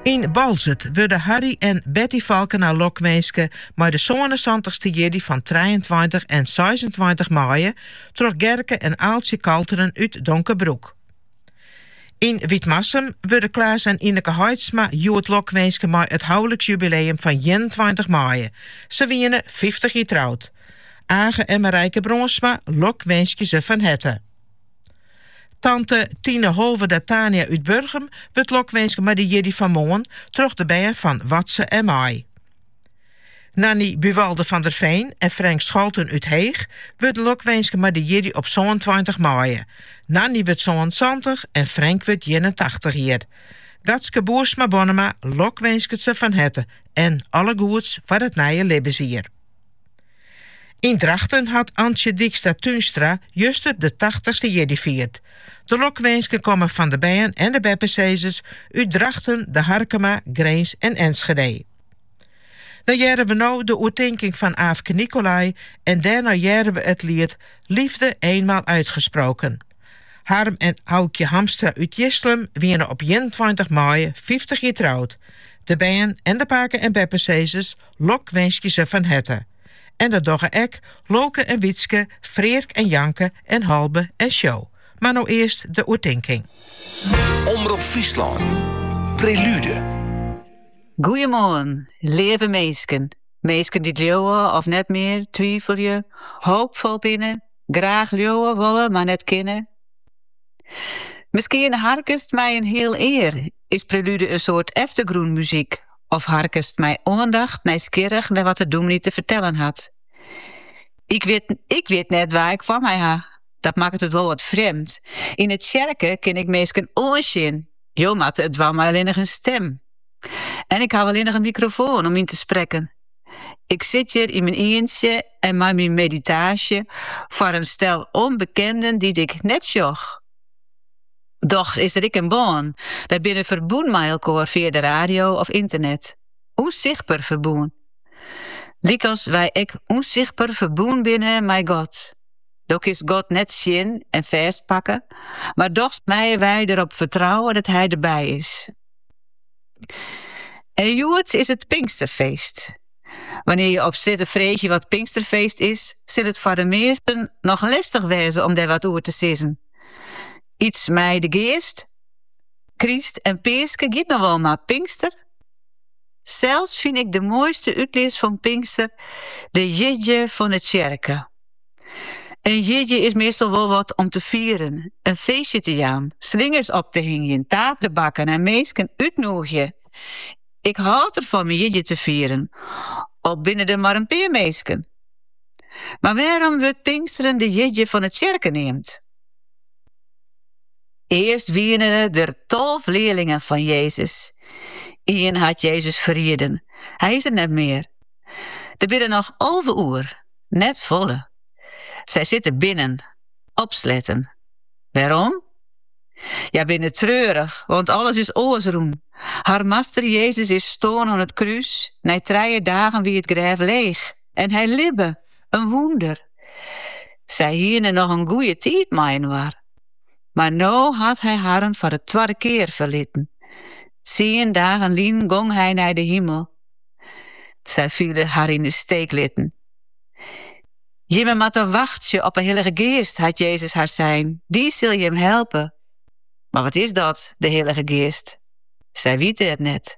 Yn Boalsert wurde Harry en Betty Falkena lokwinske mei de sânensantichste jierdei fan trijeentweintich en seisentweintich maaie troch Gerke en Aaltsje Kalteren út Donkerbroek. Yn Wytmarsum wurde Klaas en Ineke Heitsma hjoed lokwinske mei it houliksjubileum fan ienentweintich maaie. Se wiene fyftich jier troud. Age en Marijke Bronsma lokwinskje se fan herte. Tante Tine Holwerda Tania út Burgum wurdt lokwinske mei de jierdei fan moarn troch de bern fan Watze en Mei. Nanny Buwalda van der Veen en Frank Scholten út Heech wurde lokwinske mei de jierdei op sânentweintich maaie. Nanny wurdt sânensantich en Frank wurdt ienentachtich jier. Gatske Boersma-Bonnema lokwinsket se fan herte en alle goeds foar it nije libbensjier. Yn Drachten hat Antje Dykstra Tuinstra juster de tachtichste jierdei fierd. De lokwinsken komme fan de bern en de beppesizers út Drachten, De Harkema, Grins en Enschede. Dan hearre we no de oertinking fan Aafke Nicolai en dêrnei hearre we it liet Liefde eenmaal uitgesproken. Harm en Aukje Hamstra út Jislum wiene op ienentweintich maaie fyftich jier troud. De bern en de pake en beppesizers lokwinskje se fan herte. En dat dogge ek Lolke en Wytske, Freark en Janke en Halbe en Sjo. Mar no earst de oertinking. Omrop Fryslân, Prelude. Goeiemoarn, leave minsken, minsken dy't leauwe of net mear, twifelje, hoopfol binne, graach leauwe wolle mar net kinne. Miskien harkest mei in heal ear Is prelude in soart eftergrûnmuzyk of harkest mei oandacht nijsgjirrich nei wat de dûmny te fertellen hat? Ik wit, ik wit net wa't ik foar my ha. Dat makket it wol wat frjemd. Yn de tsjerke kin ik minsken oansjen. Jo moatte it dwaan mei allinnich in stim. En ik haw allinnich in mikrofoan om yn te sprekken. Ik sit hjir yn myn ientsje en mei myn meditaasje foar in stel ûnbekenden dy't ik net sjoch. Dochs is der ek in bân. Wy binne ferbûn mei elkoar fia de radio of ynternet. Unsichtber ferbûn. Lykas wy ek ûnsichtber ferbûn binne mei God. Do kinst God net sjen en fêstpakke, mar dochs meie wy derop fertrouwe dat Hy derby is. En hjoed is it Pinksterfeest. Wannear je op strjitte freegje wat Pinksterfeest is, sil it foar de measten noch lestich wêze om dêr wat oer te sizzen. Yts mei de geast, Krist en Peaske giet noch wol mar Pinkster. Sels fyn ik de moaiste útlis fan Pinkster de jierdei fan 'e tsjerke. In jierdei is meastal wol wat om te fieren, in feestje te jaan, slingers op te hingjen, taart te bakken en minsken útnûgje. Ik hâld derfan myn jierdei te fieren, al binne der mar in pear minsken. Mar wêrom wurdt Pinksteren de jierdei fan 'e tsjerke neamd? Earst wiene der tolve learlingen fan Jezus. Ien hat Jezus ferrieden. Hy is der net mear. Der binne noch alve oer, net folle. Sy sitte binnen, opsletten. Wêrom? Hja binne treurich, want alles is oars rûn. Har master Jezus is stoarn oan it krús, nei trije dagen wie it grêf leech. en hy libbe, in wûnder. Sy hiene noch in goeie tiid mei inoar, mar no hat hy harren foar de twadde kear ferliten. Tsien dagen lyn gong hy nei de himel. Sy fiele har yn de steek litten. Jimme moatte wachtsje op 'e Hillige Geast, hat Jezus har sein, dy sil jim helpe. Mar wat is dat, de Hillige Geast? Sy witte it net.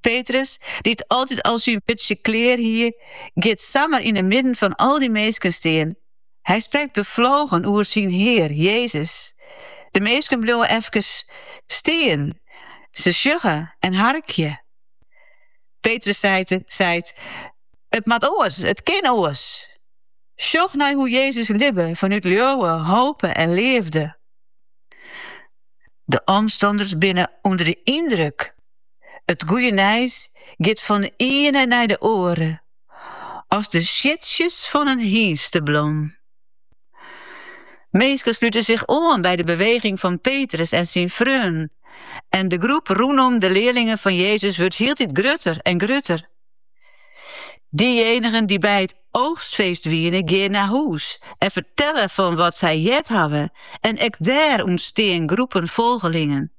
Petrus, dy't altyd al syn wurdsje klear hie, giet samar yn 'e midden fan al dy minsken stean. Hy sprekt beflogen oer syn Hear, Jezus. De minsken bliuwe efkes stean, se sjogge en harkje. Petrus sei, seit, It moat oars, it kin oars. Sjoch nei hoe Jezus libbe fanút leauwe, hope en leafde. De omstanners binne ûnder de yndruk. It goede nijs giet fan 'e iene nei de oare, as de siedsjes fan in hynsteblom. Minsken slute sich oan by de beweging fan Petrus en syn freonen, en de groep rûnom de learlingen fan Jezus wurdt hieltyd grutter en grutter. Diejenigen dy't by it oogstfeest wiene, gean nei hûs en fertelle fan wat sy heard hawwe, en ek dêr ûntstean groepen folgelingen.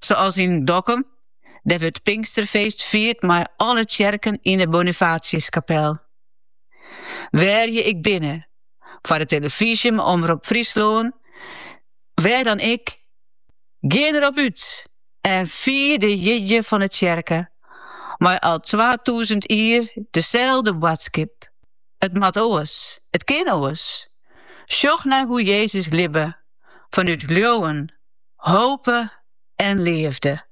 Sa as yn Dokkum, dêr wurdt Pinksterfeest fierd mei alle tsjerken yn 'e Bonifatiuskapel. Wêr't je ek binne, foar de tillefyzje mei Omrop Fryslân, wêr dan ek, gean der op út en fier de jierdei fan 'e tsjerke mei al twatûzen jier deselde boadskip. It moat oars, it kin oars. Sjoch nei hoe Jezus libbe. fanút leauwen, hope en leafde.